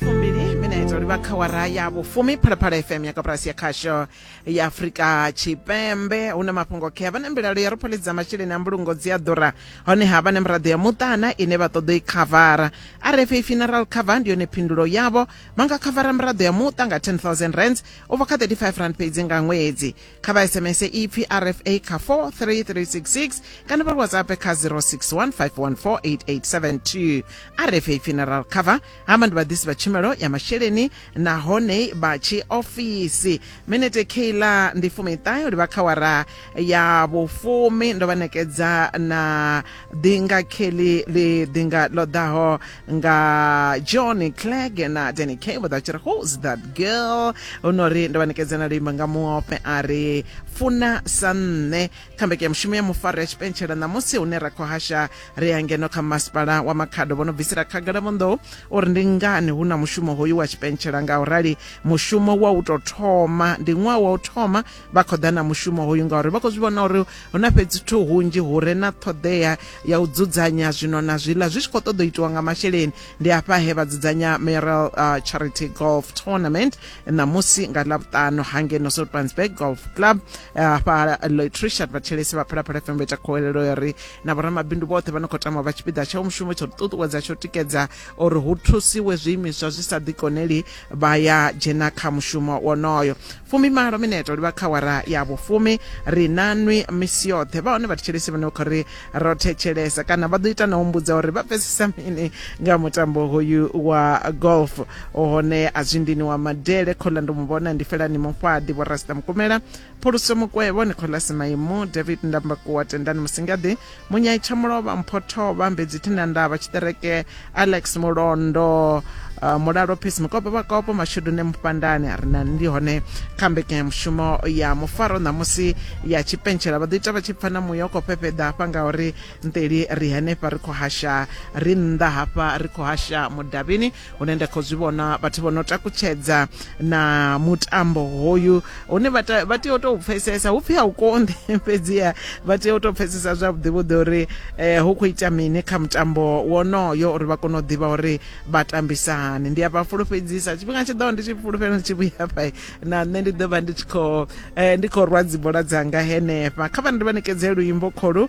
fumbili minetse livha kha wara ya vhufumi phalaphala fm ya kaburasi ya khasho ya afurika tshipembe hu na mafhungo khe vha na mbilalo ya ri pholidza masheleni a mbulungo dzi a ḓura honeha vha na miraḓo ya muṱana ine vha ṱoḓa i khavara rfa funeral cover ndi yone phindulo yavho vha nga khavara miraḓo ya muṱa nga 10000 rands u bva kha 35 rand fhedzi nga ṅwedzi kha vha sms ipfi rfa kha 43366 kana vha whatsapp kha 0615148872 rfa funeral cover hama ndi vhaḓisi vha tshumelo ya masheleni nahone vha tshi ofisi minete keilar ndi fumiṱahe u livha kha wara ya vhufumi ndo vha nekedza na ḓi nga kelly ḽi ḓi nga ḽo ḓaho nga john clegg na danny k vho ḓa tshi ri who's that girl hu no ri ndo vha nekedza na luimbo nga muofhe a ri funa sa nṋe kha mbeke ya mushumo ya mufaro ya tshipentshela ṋamusi hune ra khou hasha ri ya ngeno kha masipala wa makhado vho no bvisela khagala vhonḓou uri ndi ngani hu na mushumo hoyu wa tshipentshela nga u rali mushumo wa u tou thoma ndi ṅwaha wa u thoma vha khou ḓa na mushumo hoyu ngauri vha khou zwi vhona uri hu na fhedzi thu hunzhi hu re na ṱhoḓea ya u dzudzanya zwino na zwiḽa zwi tshi khou ṱoḓa u itiwa nga masheleni ndi hafha he vha dzudzanya meral uh, charity golf tournament ṋamusi nga ḽavhuṱanu hangeno soutpansburg golf club hafha uh, lloyd richard vhatshelesi vha phalaphala fm vha ita khohelelo ya uri na vhoramabindu vhoṱhe vha no khou tama vha tshipiḓa tsha mushumo tsho ṱuṱuwedza tsho tikedza uri hu thusiwe zwiimiswa zwi sa ḓikoneli vha ya dzhena kha mushumo wonoyo fumimalo mineto livha kha wara ya vhufumi ri na nwi misi yoṱhe vha hone vhathetshelesi vhane vha khou ri ro thetshelesa kana vha ḓo ita na humbudza uri vha pfesesa mini nga mutambo hoyu wa golf hone a zwindini wa madele khola ndo mu vhona ndi felani mufhaḓi vho rasta mukumela Phuluso Mukwevho, Nicholas Maimu, David Ndambakuwa, Tendani Musingadi, Munyai Tshamulovha, Mpho Thovha, Mbedzi Thinandavha, Tshiṱereke, Alex Mulondo, uh, Mulalo Peace Mukopo Vhakopo, Mashudu ne Mufhandani, a re na ndi hone kha mbekanyamushumo ya mufaro ṋamusi ya tshipentshela vha ḓo ita vha tshi pfa na muya u khou fhefheḓa hafha ngauri nteli ri henefha ri khou hasha ri nnḓa hafha ri khou hasha mudavhini hune nda khou zwi vhona vhathu vho no takutshedza na mutambo hoyu hune vha tea u tou pfesesa hu pfhi a u konḓi fhedziha vha tea u tou pfesesa zwavhuḓi vhuḓi uri um hu khou ita mini kha mutambo wonoyo uri vha kone u ḓivha uri vha tambisa hani ndi a vha fulufhedzisa tshifhinga tshi ḓaho ndi tshi fulufhela ndi tshi vhuya fha na nṋe ndi ḓo vha ndi tshi khou um ndi khou rwa dzibola dzanga henefha kha vha ndi vha ṋekedze luimbo kholu